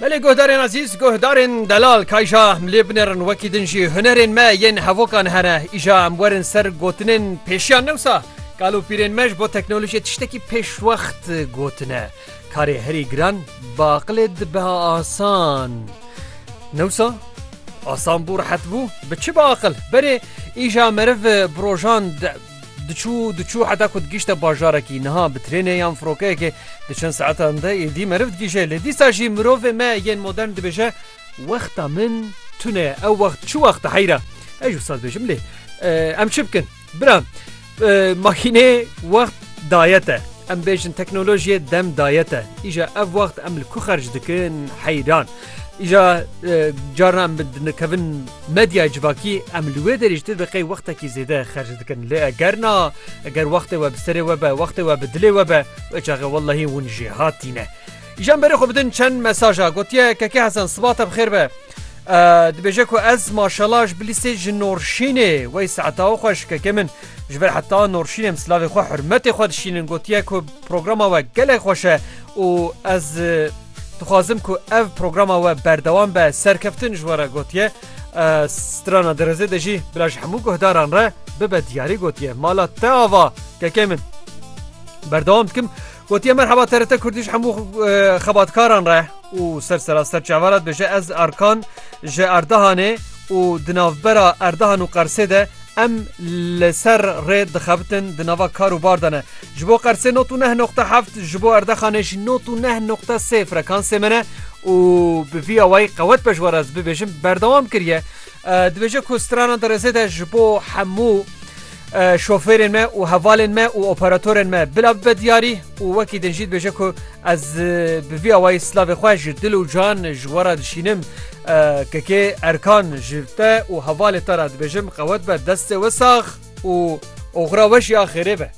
Belê guhdarên ezîz, guhdarên delal kayja em lê binêrin wekî din jî hunerên me yên hevokan hene. Îja em werin ser gotinên pêşiyan newsa. Kal û pîrên me ji bo teknolojiyê tiştekî pêşwext gotine. Karê herî giran bi aqilê dibe asan. Newsa asan bû rehet bû bi çi bi aqil berê îja meriv bi rojan Diçû diçû heta ku digîşte bajarekî. Niha bi trênê yan firokeyekê di çend saetan de êdî meriv digîje. Lê dîsa jî mirovê me yên modern dibêje wexta min tune ye. Ew wext çi wext e heyra? Ez ji wisa dibêjim lê em çi bikin? Bira makînê wext daye te. Em bêjin teknolojiyê dem daye te. Îja ev wext em li ku xerc dikin heyran. Îja carna em dinikevin medya civakî em li wê derê ji te deqey wextekî zêde xerc dikin lê eger na eger wextê we bi serê we be wextê we bi dilê we be wê çaxe wellahî hûn jê hatîne. Îjan berê xwe bidin çend mesaja gotiye kekê Hesen sibat te bi xêr be. dibêje ku ez maşalaş bilîsê ji norşînê wey saeta xwe ji kekê min ji ber heta norşînêm silavê xwe hurmetê xwe dişînin gotiye ku programa we gelek xweş e û ez Dixwazim ku ev programa we berdewam be serkeftin ji were gotiye strana dirizê de jî bila ji hemû guhdaran re bibe diyarî gotiye mala te ava kekê min berdewam dikim gotiye merheba terete kurdî ji hemû xebatkaran re û ser sera ser çavarat bêje ez arkan ji erdahanê û di navbera erdahan û qersê de Em li ser rê dixebitin di nava kar û bar de ne. Ji bo Qersê not û neh noqte heft, ji bo Erdexanê jî not û neh noqte sê frekansê me ne û bi vî awayî qewet be ji we re ez bibêjim berdewam kiriye. Dibêje ku strana di rêzê de ji bo hemû şofêrên me û hevalên me û operatorên me bila bibe diyarî û wekî din jî dibêje ku ez bi vî awayî silavê xwe ji dil û can ji we re dişînim. Kekê Erkan ji te û hevalê te re dibêjim qewet be destê we sax û oxira we jî a xêrê be.